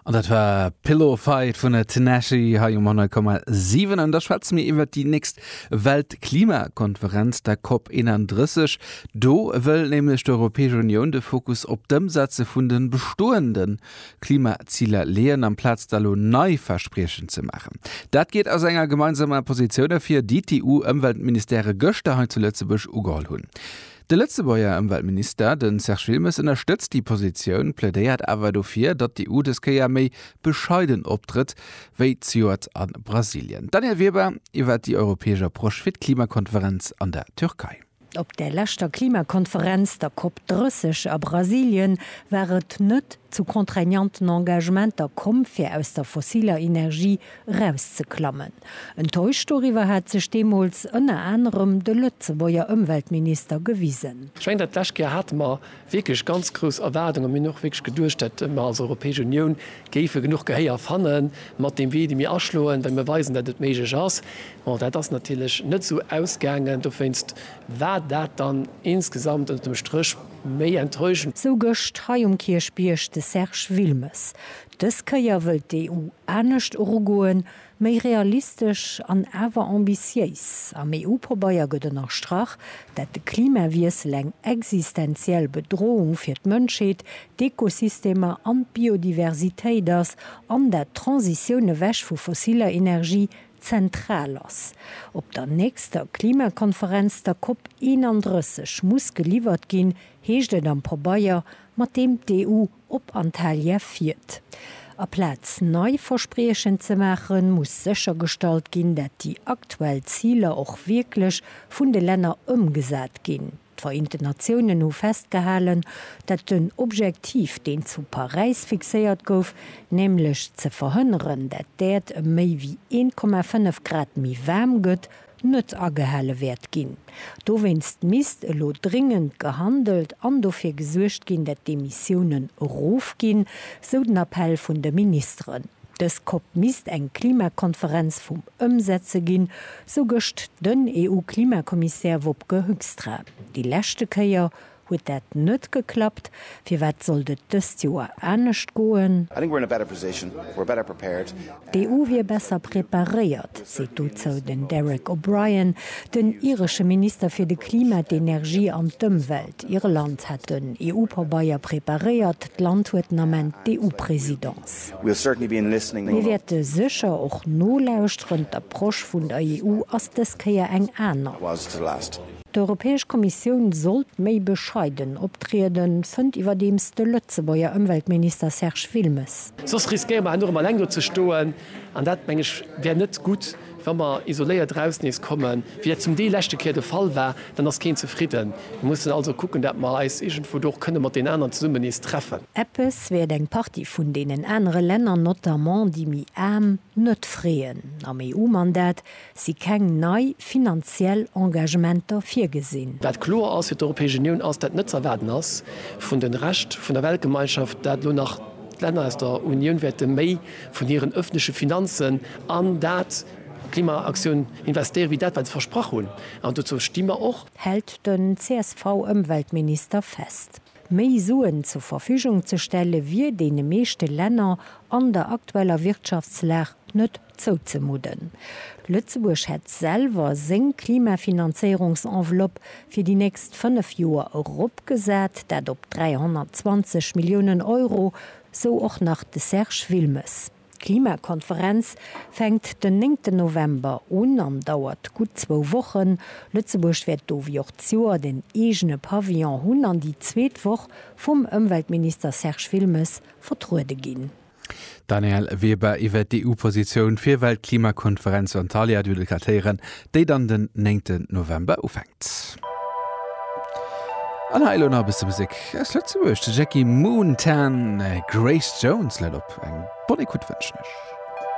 An dat war Pillow Fight vun Tinashe hei um 100,7. An da schwätze mir iwwer déi nächst Weltklimakonferenz, der COP 31. Do wëll nämlech d'Europäesch Unioun de Fokus op d'Ëmsetze vun de bestoende Klimaziler leeën, amplaz da lo nei Verspriechen ze maachen. Dat geet aus enger gemeinsamer Positioun ervir, déi d'EU-Ëmweltministere gëschter hei zu Lëtzebuerg ugeholl hunn. De Lëtzebuerger Ëmweltminister, de Serge Wilmes, ënnerstëtzt déi Positioun, plädéiert awer dofir, datt d'EU dës Kéier méi bescheiden optrëtt wéi zejoert a Brasilien. Danièle Weber iwwer déi europäesch Approche fir d'Klimakonferenz an der Türkei. Op der leschter Klimakonferenz, der Cop 30 a Brasilien, war et net zu contraignanten Engagementer komm, fir aus der fossiler Energie erauszeklammen. Enttäuscht doriwwer hat sech deemools ënner anerem de Lëtzebuerger Ëmweltminister gewisen. Ech mengen, dat lescht Joer hate mer wierklech ganz grouss Erwaardungen. Mir hunn och wierklech geduecht, datt mer als Europäesch Unioun géife genuch Gehéier fanne mat deem Wee, dee mir aschloen, well mir weisen, datt et méiglech ass. Bon, dat ass natierlech net esou ausgaangen. Dowéinst war dat dann insgesamt ënnert dem Stréch méi enttäuschend. Sou gëscht hei um Kierchbierg de Serge Wilmes. Dës Kéier wëllt d'EU anescht erugoen, méi realistesch an awer ambitiéis. Am EU-Pabeier gëtt ënnerstrach, dat de Klimawiessel eng existenziell Bedroung fir d'Mënschheet, d'Ekosystemer an d'Biodiversitéit ass an dat d'Transitioun ewech vu fossiller Energie zentral ass. Op der nächster Klimakonferenz, der Cop 31, muss geliwwert ginn, heescht et am Pabeier, mat deem d'EU, op Antalya fiert. Aplaz nei Verspriechen ze maachen, muss séchergestallt ginn, dat déi aktuell Ziler och wierklech vun de Länner ëmgesat ginn. D'Vereenten Natiounen hu festgehalen, dat den Objektiv, deen zu Paräis fixéiert gouf, nämlech ze verhënneren, dat d'Äerd ëm méi wéi 1,5 Grad méi waarm gëtt, net agehale wäert ginn. Dowéinst misst elo dringend gehandelt an dofir gesuergt ginn, dat d'Emissiounen erofginn, sou den Appell vun de Ministeren. Dës COP misst eng Klimakonferenz vum Ëmsetze ginn, sou gëscht den EU-Klimakommissär Wopke Hoekstra. Déi leschte Kéier Huet dat net geklappt? Firwat sollt et dëst Joer anescht goen? D'EU wier besser preparéiert, seet dozou den Derek O'Brien, den iresche Minister fir de Klima, d'Energie an d'Ëmwelt. Irland hätt den EU-Pabeier preparéiert, d'Land huet den Ament d'EU-Presidence. Mir wäerte sécher och nolauschteren, d'Approche vun der EU ass dës Kéier eng aner. D'Europäesch Kommissioun sollt méi bescheiden optrieden, fënnt iwwerdeems de Lëtzebuerger Ëmweltminister Serge Wilmes. Soss riskéiere mer enorm eleng do ze stoen, an dat, meng ech, wär net gutt. Wa mer isoléiert eraus nees kommen, wéi dat zum Deel leschte Kéier de Fall war, dann ass keen zefridden. Mir mussen also kucken, dat mer eis iergendwou do och kënne mat deenen aneren zesummen nees treffen. Eppes wäert eng Partie vun deenen anere Länner, notamment déi méi aarm, net freeën. Am EU-Mandat si keng nei finanziell Engagementer virgesinn. Wat kloer ass fir d'Europäesch Unioun, ass dat net ze erwaarden ass vun de Rescht vun der Weltgemeinschaft, dat elo nach d'Länner aus der Unioun wäerte méi vun hiren öffentleche Finanzen an dat Klimaaktioun investéiere wéi dat wat se versprach hunn. An dozou sti mer och. Hält den CSV-Ëmweltminister fest. Méi Suen zur Verfügung ze stelle wier deene meeschte Länner an der aktueller Wirtschaftslag net Zouzemudden. Lëtzebuerg hätt selwer seng Klimafinanzéierungsenveloppe fir déi nächst fënnef Joer eropgesat, dat op 320 Milliounen Euro, sou och nach de Serge Wilmes. D'Klimakonferenz fänkt den néngten November un an dauert gutt zwou Wochen. Lëtzebuerg wäert do wéi och d'Joert en eegene Pavillon hunn an déi zweet Woch vum Ëmweltminister Serge Wilmes vertruede ginn. D'Danièle Weber iwwert d'EU-Positioun fir Weltklimakonferenz zu Antalya, duerno d'Kartéieren, déi dann den néngten November ufänkt. An hei elo nach e bësse Musek aus Lëtzebuerg, de Jackie Moon, Tan, Grace Jones läit op. Eng bonne Écoute wënschen ech.